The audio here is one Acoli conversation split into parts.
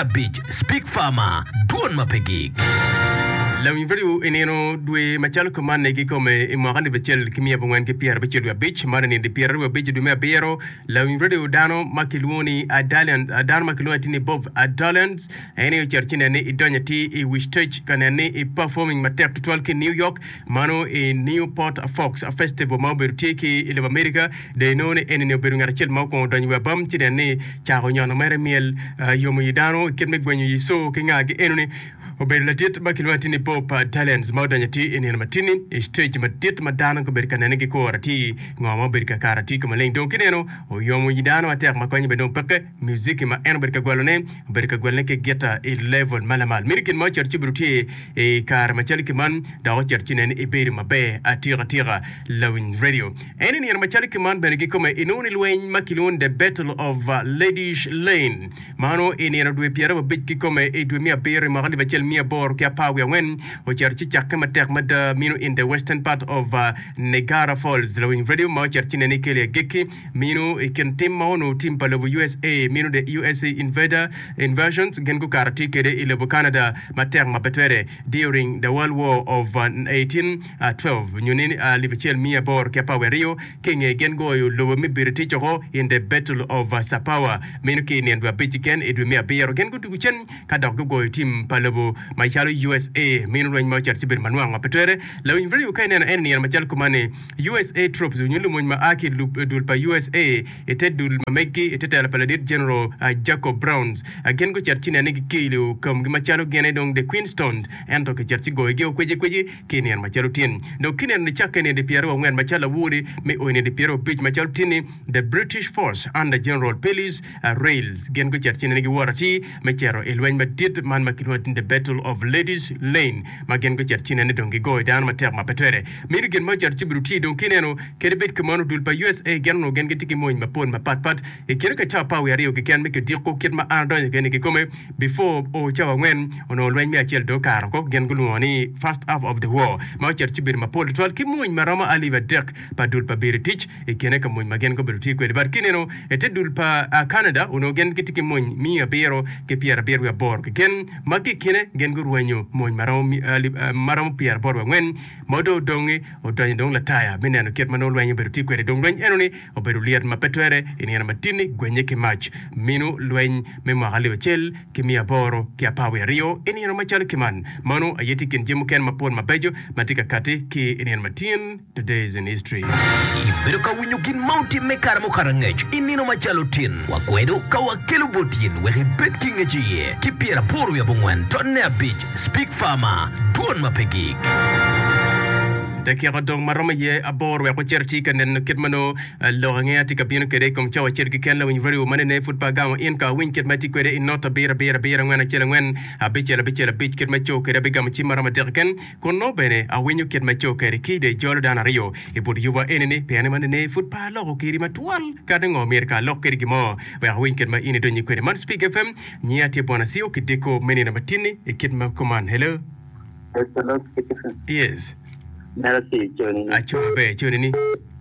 abic Speak Farmer, Dwon ma pe gik. Long Value i nino dwe macalo kumanni kikome i mwaka alip acel ki miya abongwen ki pyera abicel dwe abic, man i nindi pyera aryo abic i dwe me abiro. Long Value dano ma kilwongo ni Adalians, dano ma kilwongo atir ni Bob Adalians, en aye ocito ci nen ni idonyo atir i Wichitech ka nen ni i performing matek tutwal ki New York Mano i Newport Fox Festival ma obedo tye ki i lobo Amerika. Dong inongo ni eni-ni obedo ngat acel ma okwongo donyo i wi abam ci nen ni cako nyono mere myel yomo i dano i kit me gwenyo i co ki ngagi. Eno-ni obedo ladit ma kilwongo atir ni Bob Dylan's ma odonyo atir i nino matini i stage madit ma dano gubedo ka nene gikuro atir ngo ma obedo kakare atir ka maleng dong kineno oyomo i dano matek ma konye bene dong peke. Muziki ma en obedo ka gwelone, obedo ka gwelone ki gita i level ma lamal. Miti gin ma ocito ci obedo tye i kare macalo ki man, dok ocito ci nen ibedo maber atika tika. Lawiny Radio. En i nino macalo ki man bene gikome inongo ni lweny ma kilwongo ni The Battle of Ladies Lane. Mano i nino dwe pyerababic kikome i dwe me abiro i mwaka alip acel miya aboro ki apar wiye angwen. Ocito ci cakke matek mada mino in the western part of Niagara Falls. Lawiny Radio ma ocito ci nen ikelo i agikki. Mino i kin tim ma onongo tim pa lobo usa mino the usa invader, invasions, gin gukato tye kede i lobo Canada matek ma pe twere during the world war of eighteen twelve nyo ni alip acel miya aboro ki apar wiye aryo ki inge gin goyo lobo me British oko in the battle of Sapawa mino ki inien dwe abic kiken i dwe me abiro gin gudugu cen ka dok gugoyo tim pa lobo macalo usa mino lweny ma oceto ci bedo manwang ma pe twere lawinyb radio ka ineno eni nino macalo kumani usa troops nyo lumony ma a ki i dul pa usa i te dul ma meggi i te telo pa ladit General Jacob Browns. Gin gucito ci nene gikilo kamgi macalo gin aye dong The Queen Stones ento kicito ci goyogi o kweci kweci ki i nino macalo tin. Dok ki neno ni cakke i nedi pyer aryo angwen macalo lawode me o i nedi pyer abic macalo tin-ni The British Force under General Pilies Rales gin gucito ci nene giwot atir me cito i lweny madit man ma kilwongo ni The Battle of Ladies Lane ma gin gucito ci nene dong gigoyo dano matek ma pe twere Miti gin ma ocito ci birutii dong ki neno kadi bed ki mano dul pa usa gin onongo gin gitye ki mony mapol mapat pat i kine ka cawa pa wiye aryo kiken me kidiko kit ma an adonyo kene kikome before oo cawa angwen onongo lweny me acel dong okato ko gin gulwongo ni first half of the war ma ocito ci bedo mapol tutwal ki mony maromo alip adek pa dul pa biri tic i kine ka mony ma gin gubedo tye kwede but ki neno ite dul pa Canada onongo gin gitye ki mony miya abiro ki pyera abiro wiye aboro kiken ma ki i kine gin gurwenyo mony ma romo pyeraboro wa ngwen ma dong odongi odonyo dong Lataya me neno kit ma nongo lweny obedo tye kwede. Dong lweny enoni obedo lyet ma pe twere i nino ma tin-ni gwenye ki mac. Minu lweny me mwaka alip acel ki miya aboro ki apar wiye aryo i nino macalo kiman. Manu aye tye i kin jami mukene mapol mabeco ma tye ka katti ki i nino ma tin. Today in History. Ibedo ka winyo gin ma otimme kare mukato angec i nino macalo tin? Wakwedo ka wakelo bot in wek ibed ki ngec iye ki pyer aboro wi abongwen dot ne abic Speak Farmer, Dwon ma pe gik. Dakika odong ma romo iye aboro wek wacit atir ka neno kit ma nongo lok angeya tye ka bino kwede i kom cawa acel keken. Lawiny radio man ene pud pe agamo in ka awiny kit ma itye kwede i not abiro abiro abiro angwen acel angwen abicel abicel abic kit ma ico kwede. Abigamo cim ma romo adek keken Kun nongo bene awinyo kit ma co kadi ki dong ijolo dano aryo i but yuba eni-ni, pien man ene pud pe aloko kiri matwal. Kadi ngo myero ka alok kadi gin mo wek awiny kit ma in idonyi kwede. Man Spig FM, nyinga tye Bwana Siyo ki Deko me nino ma tin-ni i kit ma kuman. Hello. Yes. Aco maber, co nini?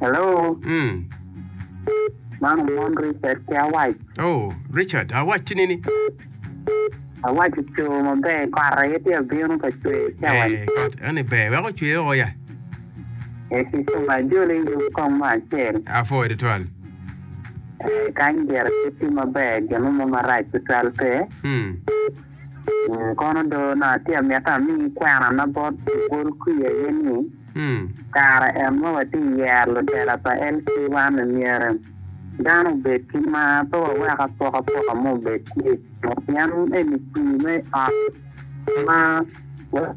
Hello. Mm. Man omon Richard ki awac. Oh, Richard, awac tini ni. Awac oco maber kot aye tye abino ka cwer ki awac. Eh, kot ene ber. Wek ocwer o ya. Eh, ki cuma ajoli yub kong mo acel. Apo ede twal. Eh, kany gire pe tye maber, gin mo marac tutwal pe. Mm. Mm, kono do na tye amito amiyi kwerana bot ogol kwi aye ni. I kare en ma watye ka yero lutela pa LC wa me myero dano obed ki mar pe wawek apokapoka mo obed tye pien eni kwir me ot ma watye ka yero.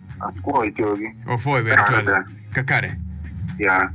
Apwo i cogi. Opwo i bedo col kakare.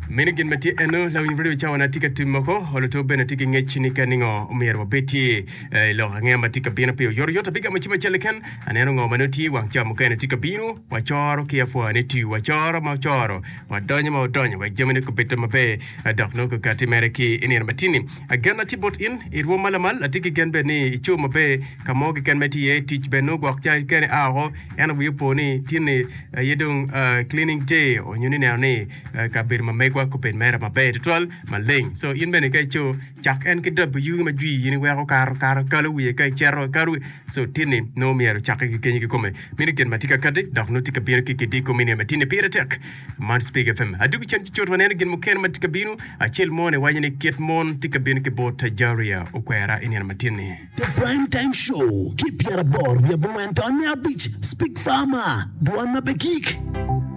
Meno gin ma tye eno, lawiny radio cawa na tye ka tim moko, luto bene tye ki ngec ni ka ningo omyero wabed tye eh, i lok ange ma tye ka bino pe oyoto yot abigamo cim acel ken aneno ngo ma nongo tye wang ca mukene tye ka bino wacoro ki apwa ni tiu wacoro ma ocoro wadonyo ma odonyo wek jamine kubedte maber eh, dok nongo ka timere ki i nino matini agen na tye bot in i rwom ma lamal atye ki gen bene ni ico maber ka mo keken ma itye iye tic bene nongo gwok ca kene a oko En owiyo po ni tinni aye dong cleaning day onyo ni neno ni kabedo ma megwa kubed mere maber tutwal maleng. So in bene ka ico cak en ki dab yugi ma jwi in iweko karo karo kalo wiye ka icero kalo wiye. So tinni nongo myero cake ki kenyi kikome mini gin ma tye ka kati dok nongo tye ka bino ki kidi kumi ni ma tinni pire tek. Man Speak FM. Adugu cen ci cut waneno gin mukene ma tye ka bino. Acel mone waco ni kit mon tye ka bino ki bot Tajaria okwera i nino ma tinni. The Prime Time Show ki pyeraboro wiye abongwen taonnya abic, Speak Farmer, dwan ma pe gik.